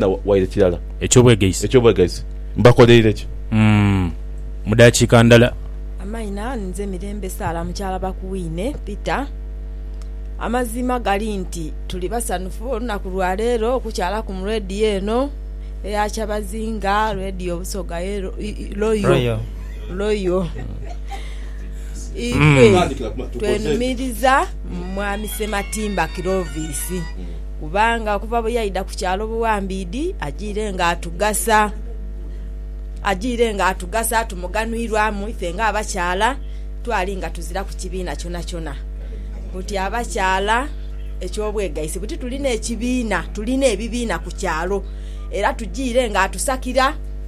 na waire kirala. Eky'obwegaise. Eky'obwegaise. Mbakoleire ki? Umm. Mu daakiika ndala. Amaina, nze Mirembe Sarah mukyala Bakuwine Peter. Amazima gali nti tuli basanhufu olunaku lwa leero okukyalaku mu Radio eno eya kyabazinga, Radio Busoga ye Royal. Royal. Ife twenhumiriza mu Mwami Ssematimba Clovis. Kubanga okuva bwe yaidha ku kyalo buwambiidhi ajiire ng'atugasa. Ajiire ng'atugasa, tumuganhwirwamu ife ng'abakyala twali nga tuziraku kibiina kyonakyona. Buti abakyala eky'obwegaisi buti tulina ekibiina, tulina ebibiina ku kyalo era tujiire ng'atusakira.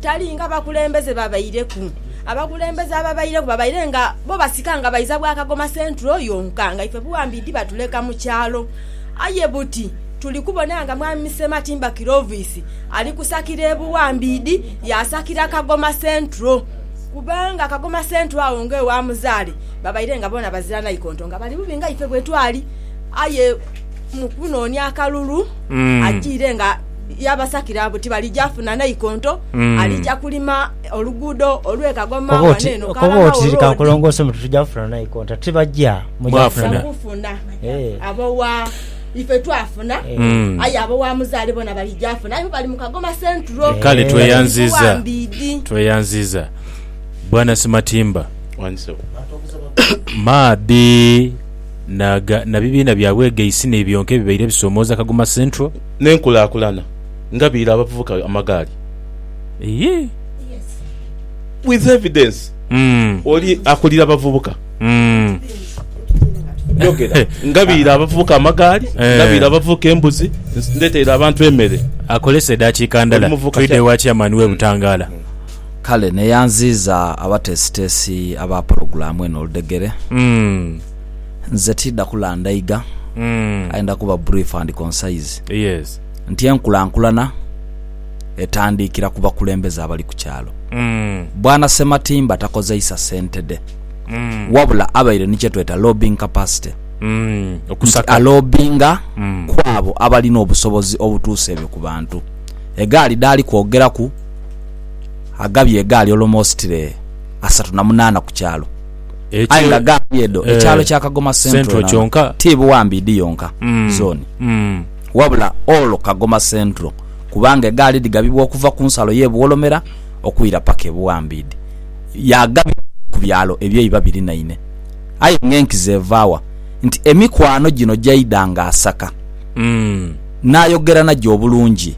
Tali nga bakulembeze babaireku. Abakulembeze ababaireku babaire nga bo basika nga baiza bwa kagoma central yonka nga ife buwambiidhi batuleka mu kyalo. Aye buti tuli kubona nga Mwami Sematimba Clovis ali kusakira e Buwambiidhi yaasakira Kagoma Central. Kubanga Kagoma Central agho ng'ewa muzaale babaire nga boona bazira naikonto nga bali bubi nga ife bwe twali. Aye mu kunoonia akalulu ajiire nga. yabasakira buti balija funa naikonto mm. alija kulima oluguudo olwe kagoma waneeno kalangaolodikankulongoose muti tuja funa naikonto ati baja mujafuna eh. abowa ife twafuna eh. mm. aye abo wa muzaale bona balijafuna aye bali mukagoma sentro eh. kale tweyanziza tweyanziza bwana simatimba maadhi na bibiina byabwegeisi n'ebyonka ebibaire bisomooza kagoma central n'enkulakulana nga biira abavubuka amagaali. With evidence oli akulira abavubuka nga biira abavubuka amagaali nga biira abavubuka embuzi ndheteire abantu emere. Akolese edaakiika ndala twidhe ewa Chairman w'e Butangaala. Kale neyanziiza abateesiteesi aba pulogulaamu eno oludhegere. Nze tiidha kulandaiga, aye ndha kuba brief and concise nti enkulankulana etandiikira ku bakulembeze abali ku kyalo. Bwana Ssematimba takozeisa ssente dhe, wabula abaire ni kye tweta lobbying capacity, nti alobbinga ku abo abalina obusobozi obutuusa ebyo ku bantu. Egaali dhaali kwogeraku, agabye egaali olomositire asatu na munaana ku kyalo. aye nga ghaali edho ekyalo kya Kagoma Central kyonka ti Buwambiidi yonka zooni wabula all Kagoma Central kubanga egaali dhigabibwa okuva ku nsalo y'e Buwolomera okwira paka e Buwambiidi yaagabibwa ku byalo eby'eiba birinaine aye nga enkizo eva wa nti emikwano gino gyaidhanga asaka n'ayogerana gyo obulungi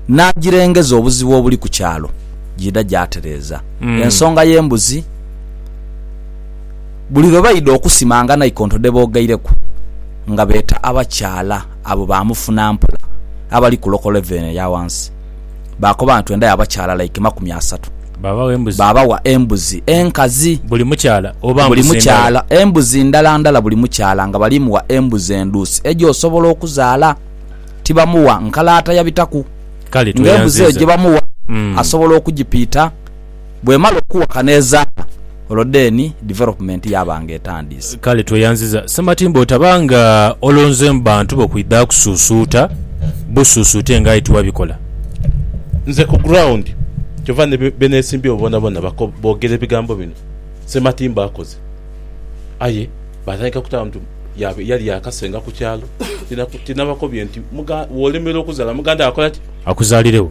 n'agirengeza obuzibu obuli ku kyalo giidha gyatereeza ensonga y'embuzi buli lwe baidha okusimanga naikonto dhe boogaireku nga beeta abakyala abo ba mufuna mpola abali ku loko levulu eno eya wansi. Baakoba nti twendayo abakyala like makumi asatu. Baabagho embuzi. Baabawa embuzi enkazi. Buli mukyala oba mbuzi ndala? Buli mukyala embuzi ndala ndala buli mukyala nga bali muwa embuzi endhuusi egy'osobola okuzaala. Tibamuwa nkalaata ya bitaku. Kale tweyanziiza. Nga embuzi eyo gye bamuwa asobola okugipiita. bw'emala okuwaka n'ezaala, olwo then development yaaba nga etandiise. Kale tweyanziza Ssematimba otaba nga olonzeemu bantu bo kwidha kusuusuuta busuusuute nga aye tiwabikola. Nze ku ground kyova ni benesimbyewo bonabona bogera ebigambo bino Ssematimba akoze aye batandika kutama nti yali yakasenga ku kyalo tinabakobye nti wolemerwa okuzala muganda wo akolaki? Akuzalirewo.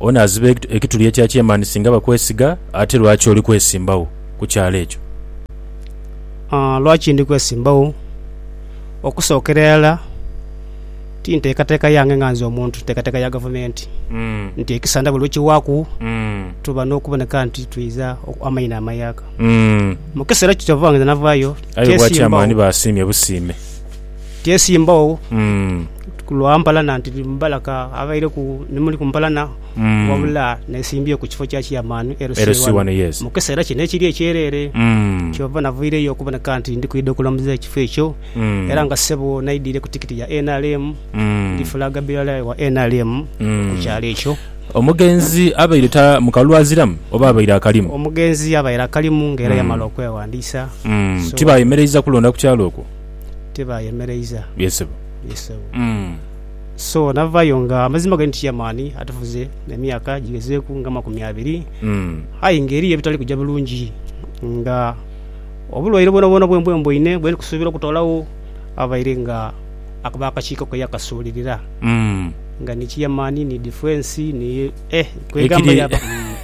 Onaaziba ekituli ekya kyemaani singa bakwesiga? Ate lwaki oli kwesimbagho ku kyalo ekyo? Lwaki ndi kwesimbagho? Okusookera irala, ti nteekateeka yange nga nze omuntu, nteekateeka ya gavumenti nti ekisanda buli lwe kiwaaku tuba n'okuboneka nti twidha amaina amayaaka. Mu kiseera kiti oba nga nze navaayo, kyesimbawo. Aye obwa kyemaani basiimye busiime. Tyeesimbagho lwa mpalana nti ndi mubalaka abaireku ni muli ku mpalana, wabula neesimbyeku kifo kya Chairman, LC1, yes, mu kiseera kino ekiri ekyereere. Kyova navaireyo okuboneka nti ndi kwidha okulamuza ekifo ekyo era nga ssebo naidhire ku tikiti ya nrm, ndi Flag Bearer wa nrm ku kyalo ekyo. Omugenzi abaire ta mu kalulu aziramu oba abaire akalimu? Omugenzi abaire akalimu nga era yamala okweghandiisa. So, Tibaayemereiza kulonda ku kyalo okwo? tebaayemereiza. Ye sebo. Ye sebo. Mm. So navayo nga amazima gali nti chairman atufuze emyaka gigezeeku nga amakumi abiri Mm. aye nga eriyo ebitali kuja bulungi nga obulwaire bwonabwona bwembwembweine bwe ndikusuubira okutoolawo abaire nga ako bakakiiko ke yakasuulirira Mm. nga ni chairman ni defence ni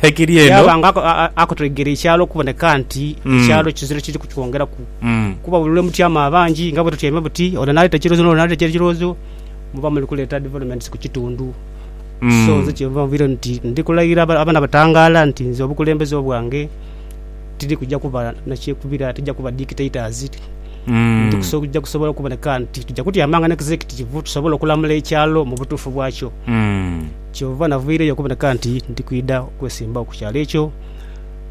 ekiri eno yaba nga akutegera ekyalo okuboneka nti ekyalo kizira kiri kukiwongeraku kuba buli lwemutyama abangi nga bwetutyaime buti ono naleeta ekirozo n'ono naleeta ekirozo muba muli kuleeta developments ku kitundu so nze kyenva nvire nti ndi kulagira abaana batangaala nti nze obukulembeze obwange tiri kuja kuba nakyekubira tija kuba dictators tija kusobola okuboneka nti tuja kutyamanga n'executive tusobole okulamula ekyalo mu butuufu bwakyo. Kyova navaireyo okuboneka nti ndi kwidha okwesimbagho ku kyalo ekyo.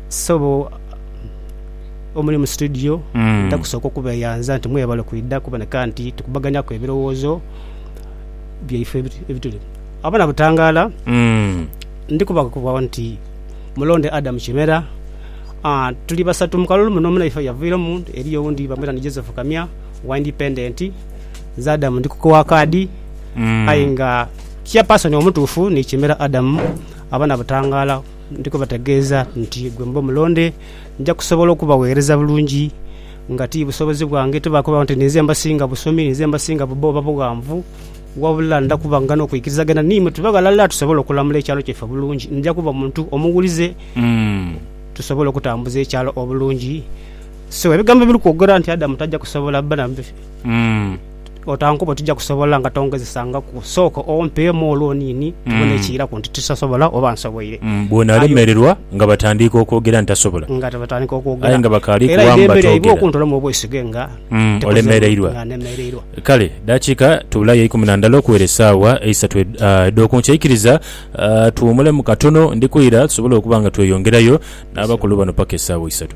Ssebo omuli mu situdiyo, ndidha kusooka okubeeyanza nti mwebale kwidha okuboneka nti tukubaganyaku ebirowoozo byaife ebituli. Abo nabutangaala, ndi kubakakibwa nti mulonde Adam Kimera. Tuli basatu mu kalulu muno, munaife yavairemu, eriyo owundi bamweta ni Joseph Kamya owa Independent. Nze Adam ndi kukowa kaadi aye nga... Chairperson omutuufu ni Kimera Adam. Abana Butangala ndi kubategeeza nti gwe mube omulonde. Nja kusobola okubaweereza bulungi nga ti busobozi bwange, tibaakubagho nti ninze mbasinga busomi, ninze mbasinga bubba oba bughanvu, wabula ndha kuba nga n'okuikirizagana n'imwe tube ghalala tusobole okulamula ekyalo kyaife bulungi. Nja kuba muntu omuwulize tusobole okutambuza ekyalo obulungi. So ebigambo ebiri kwogera nti Adam taja kusobola bba na. otankoba oti tija kusobola nga tongezesangaku. Sooka ompeemu olwoniini tubone ekiiraku nti tisobola oba nsoboire. Bw'onaalemererwa nga batandiika okwogera nti tasobola. Nga batandiika okwogera. Aye nga bakaali kuwaamu batoogera. Era idembe lyaibwe okuntolamu obwesige nga ntemereirwa. Nga ntemereirwa. Kale dakiika tubulayo eikumi na ndala okuwera esaawa eisatu edh'oku nkya. Ikiriza tuwumulemu katono, ndi kwira tusobole okuba nga tweyongerayo n'abakulu bano paka esaawa isatu.